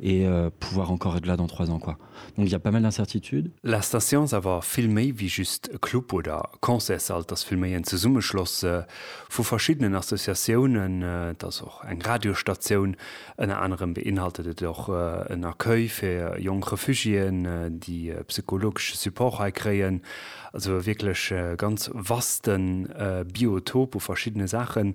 Et pouvoir encore être là dans trois ans quoi donc il ya pas mal d'incertitudes. La Station ass awer vill méi wéi just e Club oder Concertssall, et ass vill méi en Zesummeschloss vu verschiddenen Associatiounen, et ass och eng Radiostatioun, ënner anerem beinhaltet et och en Accueil fir jonk Refugiéen, déi psychologesche Support hei kréien, also e wierklech ganz vaste Biotop u verschiddene Saachen.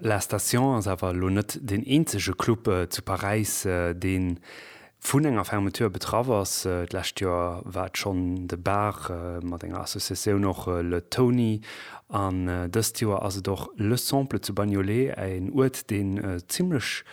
La Station ass awer elo net deen eenzege Club zu Paräis, dee vun enger Fermeture betraff ass. D'lescht Joer war et schonn de Bar mat enger Associatioun, och Le Tony, an dëst Joer ass et och Le Sample zu Bagnolet, en Uert, deen zimlech,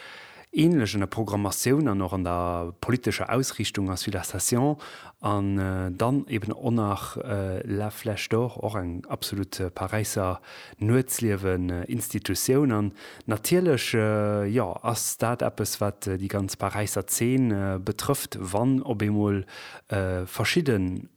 ähnlech an der Programmatioun an och an der politescher Ausriichtung ass wéi La Station an dann eben och nach La Flèche d'Or, och eng absolut Paräisser Nuetsliewen-Institutioun. An natierlech, jo, ass dat eppes, wat déi ganz Paräisser Zeen betrëfft, wann op eemol verschidden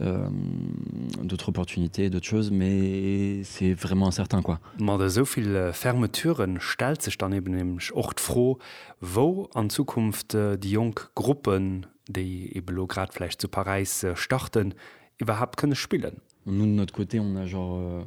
d'autres opportunités, d'autres choses, mais c'est vraiment incertain quoi. Mat esou vill Fermeturen stellt sech dann eben nämlech och d'Fro, wou an Zukunft déi jonk Gruppen, déi eben elo grad vläicht zu Paräis starten, iwwerhaapt kënne spillen. Nun d'un autre côté, on a genre.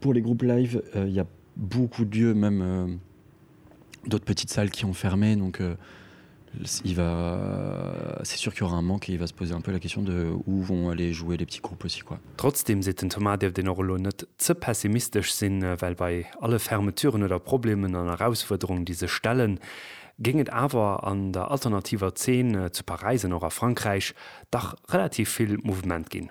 Pour les groupes live, il y a beaucoup d'yeux, même d'autres petites salles qui ont fermé, donc il va, c'est sûr qu'il y aura un manque et il va se poser un peu la question de où vont aller jouer les petits groupes aussi quoi. Trotzdem, seet den Thomas, dierft een och elo net ze pessimistesch sinn, well bei alle Fermeturen oder Problemen an Erausfuerderungen, déi sech stellen, géing et awer an der alternativer Zeen zu Paräis an och a Frankräich dach relativ vill Mouvement ginn.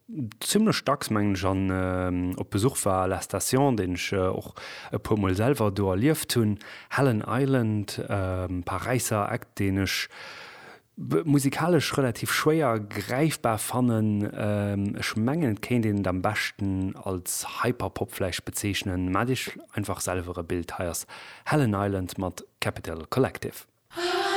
zimmlech dacks, mengen ech, an op Besuch war à la Station, deen ech och e puer mol selwer do erlieft hunn, Helen Island, Paräisser Eck, deen ech musikalesch relativ schwéier gräifbar fannen. Ech mengen et kéint een et am beschten als Hyperpop vläicht bezeechnen. Maacht iech einfach selwer e Bild, hei ass Helen Island mat Capital Collective.